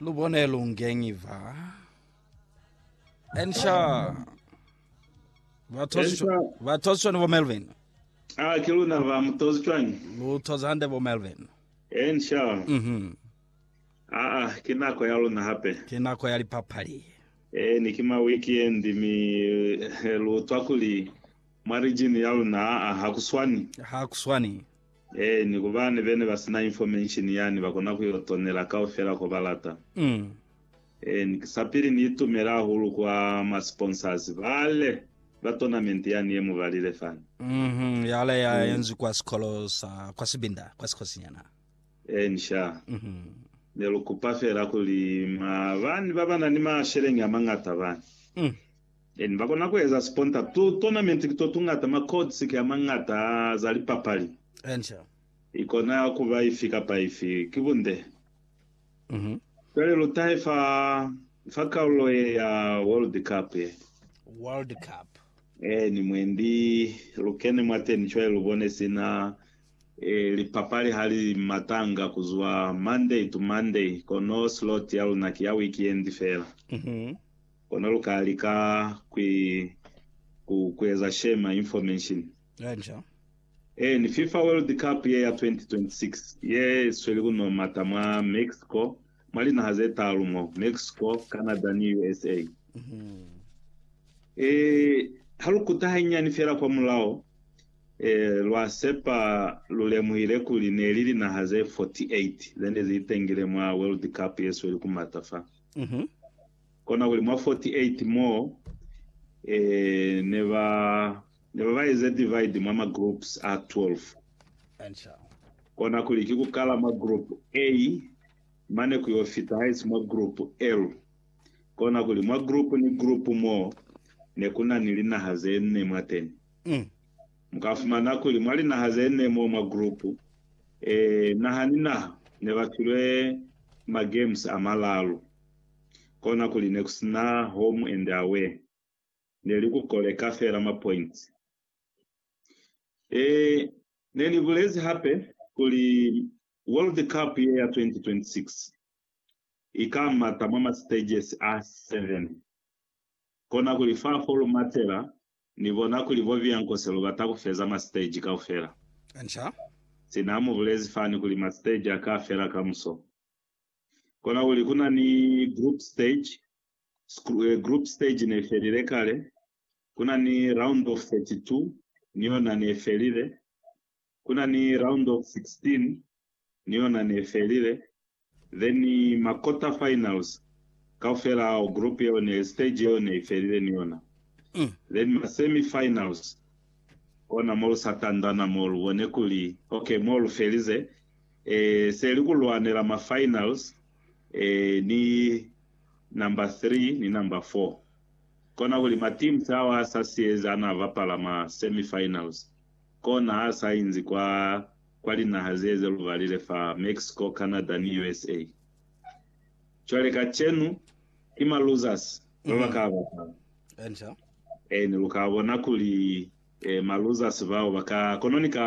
Lubone lungenyi va. Ensha. Ensha. Batozishwani bo Melvin. Ah, ke luna ba mutozi cwani? Lutoza hande bo Melvin. Ensha. Mhm. Ah, ah, ke nako ya luna hape. Ke nako ya lipapali. Eh, ni ke ma weekend mi eh, lutwa kuli mwa region ya luna ah, ah, ha kuswani. Ha kuswani. Ee, ni ku bani bene ba sina information yani ba kona ku yo tonela kaufela ko ba lata. Ee, ni sa pili ni itumela hahulu kwa ma sponsors bale ba tournament yani ye mu balile fani. Yale ya enzwi kwa sikolo sa kwa Sibinda, kwa Sikosinyana. Ee, ni sha. Ne lu kupa fela kuli ma bani ba ba na ni masheleñi a mañata bani Then ba kona ku eza siponta. Tu tournament ki to tu ngata, ma codes ki a mangata a za lipapali. Enca. I kona ku ba ifi kapa ifi. Ki bunde. Mhm. Cwale lu tahe fa, fa kalulo ye ya World Cup ye. World Cup. Eh, ni mwendi. Lu kene mwateni cwale lu bone sina, eh, lipapali ha li matanga ku zwa Monday to Monday, kono slot ya luna ki ya weekend fela. Mhm. Kono lu ka lika kwi, ku, ku eza shema information. Kanca. Eeni, FIFA World Cup ye ya 2026, ye sweli ku no mata mwa Mexico, mwa linaha ze taalu mo, Mexico, Canada, ni USA. E, ha lu kuta hanyinyani fela kwa mulao, e, lwa sepa lu lemuhile kuli ne li linaha ze 48 ze ne zi itengile mwa World Cup ye sweli ku mata fa. Konakuli mwa 48 moo ne ba ne ba ba eza divide mwa ma groups a 12. Answer. Konakuli ki ku kala mwa group A mane ku yo fita haisi mwa group L. Konakuli mwa group ni group moo ne ku na ni linaha ze nne mwateni. Mm. Mu ka fumana kuli mwa linaha ze nne moo mwa group A, naha ni naha ne ba filwe ma games a malalu. Kona kuli nekusina home and away, neli ku koleka feela ma points. Eeh, nenibulezi hape kuli World Cup ye ya 2026 ikamata mwa ma stages a 7. Kona kuli fa folu matela nibona kuli bo Biancos lubata kufeza ma stage kaufela. Sina mubulezi fani kuli ma stage aka fela kamuso. Kona kuli kuna ni group stage, eh, group stage ne felile kale, kuna ni round of 32 ni yona ne felile, kuna ni round of 16 ni yona ne felile, then ma quarter finals kaufela ao group yeo ne stage yeo ne ifelile ni yona, mm. then ma semi finals kona mo lu sa tandana mo lu bone kuli okay mo lu felize seli ku lwanela ma finals ni number 3 ni number 4. Kona kuli ma teams ao a sa siezi ana bapala ma semi finals kona ha sa inzi kwa kwa linaha ze ze lubalile fa Mexico, Canada ni usa. Cwale kacenu ki ma losers ba ba ka bapala. Ee ni lu ka bona kuli ma losers bao ba ka kono ni ka